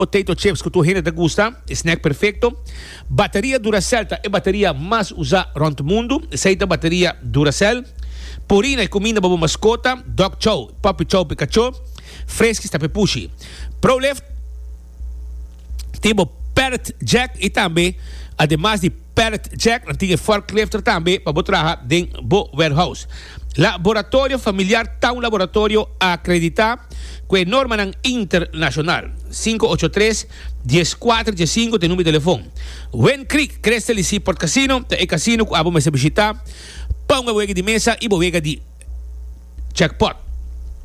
Potato chips cu tur hende ta gusta, e snack perfecto. Bateria Duracell ta e bateria mas usa rond mundo. Esey ta bateria Duracell. Purina e cuminda pa bo mascota, dog chow, puppy chow pa e cacho. Friskies ta pa e pushi. Prolift tin bo pallet jack y tambe ademas di. Pallet jack nan tin e forklifter tambe pa bo traha den bo warehouse. Laboratorio familiar ta un laboratorio akreditá ku e normanan internashonal. Sinku ocho tres, dies kuater dje sinku ta e number di telefon. Wind Creek Crystal y Seaport Casino ta e kasino ku abo mester bishitá pa un awege di mesa i bo wega di jackpot.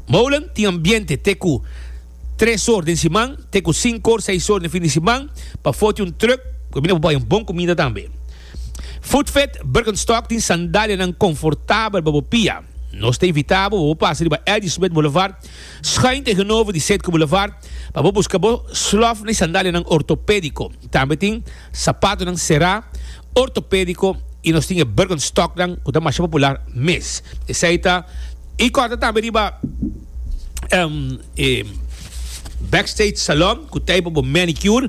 Molen tin ambiente te ku. tres or den siman te ku sinku or, seis or den fin di siman, pafó tin un trùk ku e bini pa bai un bon kumida tambe. Foodfit Birkenstock tin sandalianan konfortabel pa bo pia. Nos ta invitá bo pa bo pasa riba Addy Smith Boulevard, schuin tegenover di Setco Boulevard, pa bo buska bo slof na e sandalianan ortopédiko. Tambe tin sapatonan será. Ortopédiko i nos tin e Birkenstocknan ku ta masha popular mes. Esei ta i kòrta tambe riba e Backstage Salon ku ta i pa bo manicure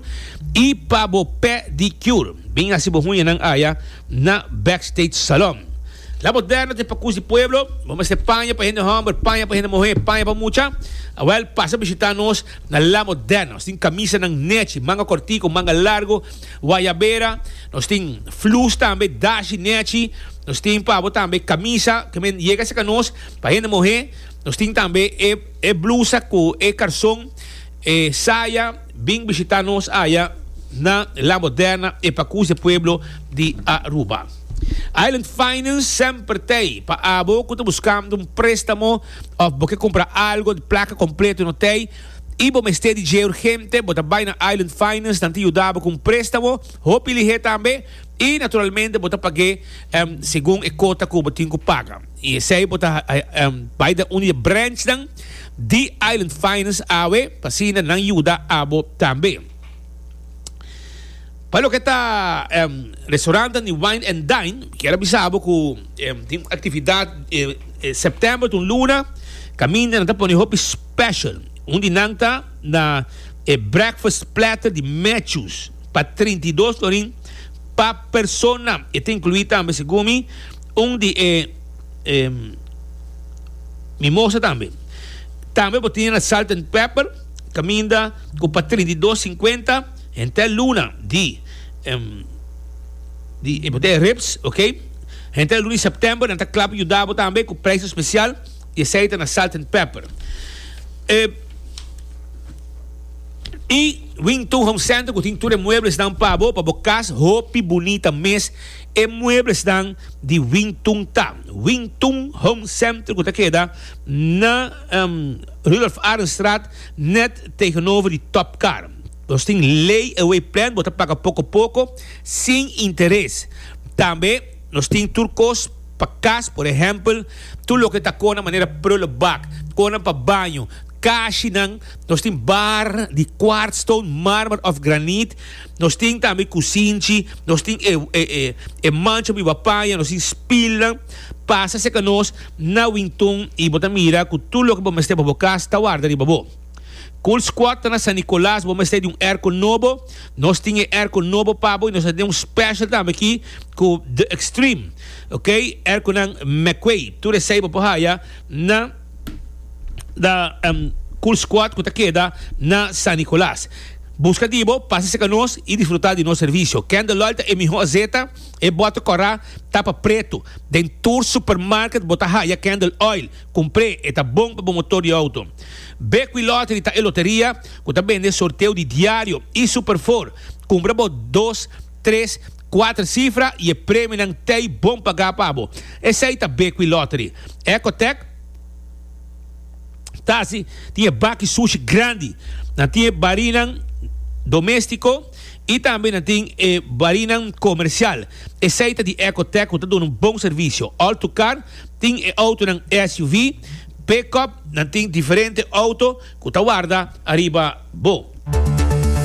i pa bo pedicure. Bin hasi bo hunyanan aya na Backstage Salon. La Moderno ta i pa Kus di Pueblo, bo mester paña pa hende hòmber, paña pa hende muhé, paña pa mucha? Wèl, pasa bishitá nos na La Moderno. Nos tin kamisanan nèchi, manga kòrtiku, manga largu. Guayabera, nos tin flus tambe, dashi, nechi, nos tin pa abo tambe camisa, ke men yega cerca nos, pa hende muhe, nos tin tambe e e blusa cu e carson, e saya, bin bishita nos aya na La Moderna e Pacus de Pueblo di Aruba. Island Finance semper tey pa abo cu ta buscando un prestamo of bo ke compra algo di placa completo no tey, y bo mester di dje urgente, bo ta bay na Island Finance, nan ta yuda bo cu un prestamo hopi lihé tambe y naturalmente bo ta pag'é segun e cota cu bo tin cu paga. Y esey bo ta bay den un di e branchnan di Island Finance awe pa asina nan yuda abo tambe. Pa loke ta restaurantenan di Wine and Dine, mi kier a bisa bo cu tin un actividad September, ta un luna, caminda nan ta pone hopi. Special. Un di nan ta na e breakfast platter di Matthews pa trinta i dos florin pa persona. E ta inclui tambe, segun mi, un di e e mimosa tambe. Tambe bo tin na Salt and Pepper caminda cu pa trinta i dos cincuenta henter luna di di e bo ta e ribs, ok? Henter luna di September nan ta cla pa yuda bo tambe cu prijs especial. Y esey ta na salt and pepper. E Y Wing Tun Home Center cu tin tur e mueblesnan pa bo, pa bo cas hopi bunita mes. E mueblesnan di Wing Tun ta. Wing Tun Home Center cu ta keda na um Rudolf Arenstraat net tegenover di Top Car. Nos tin lay away plan, bo ta paga poco poco sin interes. Tambe. Nos tin tur kos pa kas, por ehèmpel, tur loke ta kona manera prullenbak, konan pa baño, kashinan, nos tin bar di kwartston, mármer òf graniet, nos tin tambe kusinchi, nos tin e e mancha biba paña, nos tin spilnan. Pasa serka nos na winton i bo ta mira ku tur loke bo mester pa bo kas ta warda riba bo. Cool Squad ta na San Nicolas, bo mester di un airco nobo, nos tin e airco nobo pa bo y nos ta den un special tambe aki cu The Extreme, ok, airconan McQuay, tur esey bo por haya na da Cool Squad cu ta keda na San Nicolas. Busca di bo, pasa cerca nos y disfruta di nos servicio. Candle Oil ta e miho azeta, e bote cora tapa preto. Den tur supermarket bo ta haya Candle Oil. Kumpré, e ta bon pa bo motor di outo. Bequi Lottery ta e loteria ku ta bende sorteo di diario i superfor. Kumpra bo dos, tres, kuater sifra i e premionan t'ei bon pagá pa bo. Esei ta Bequi Lottery. Ecotech ta hasi tin e baki sushi grandi. Nan tin e barinan doméstiko i tambe nan tin e barinan komersial. Esei ta di Ecotech ku ta duna un bon servisio. All to Car tin e outonan SUV, pickup, nan tin diferente outo ku ta warda ariba bo.